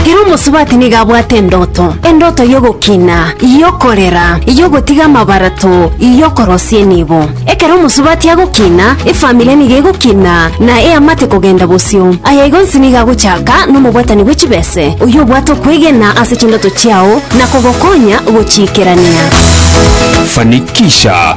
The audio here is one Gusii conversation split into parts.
Ere omosubati nigo abwate endoto, endoto y'ogokina, y'okorera, y'ogotiga amabarato, y'okorosia enibo. Ekero omosubati agokina, efamiri nigo egokina, na eamate kogenda bosio. Aya igonsi nigo agochaka nomobwatani bwe chibese, oyio obwate okwegena ase chindoto chiao na kogokonya gochiikerania. Fanikisha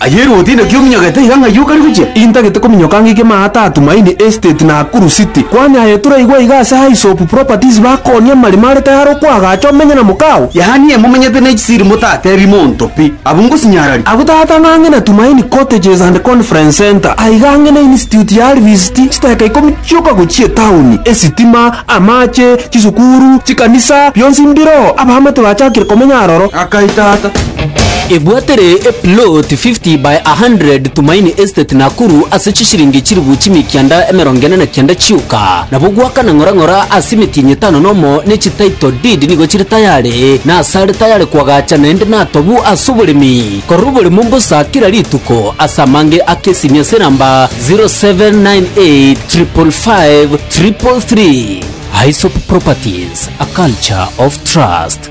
Aye Ruote inaki ominyogete iga ng'ai okare gochia? Intagete kominyoka ang'e ike maa ata Tumaini Estate Nakuru City. Kwani aye toraigwa iga ase Hyssop Properties bakonia amarimo are tayare okoagacha omenye na mokao? Yaani momenyete ne chisiri motatebi monto pi. Abwo ngosinyararia. Abwo tata ng'a ang'e na Tumaini Cottages and Conference Centre, aiga ang'e ne Institute ya Alvist, chiteka ikomi chioka gochia etauni, esitima, amache, chisukuru, chikanisa, bionsi mbiroo, abaamate bachakire komenya aroro. Akai tata. Ebwatere a plot 50 by 100 Tumaini Estate Nakuru ase chisiringi chilifu chimia kianda emerongo ene na kianda chioka. Nabo gwaka na ng'ora ng'ora ase emetienyi etano nomo ne chi title deed nigo chire tayare na ase are tayare kwagacha naende natobu ase oboremi korora oboremo mbosa kira rituko ase amange ake esimi ase enamba 0798555333 Aesop Properties a culture of trust.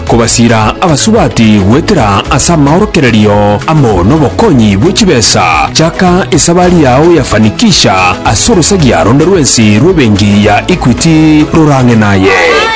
Kobasira abasubati goetera ase amaorokererio amo nobokonyi bwe chibesa, chaka esabari yao ya fanikisha ase orosagia ronde rwensi rw'ebenki ya Equity rorang'e naye.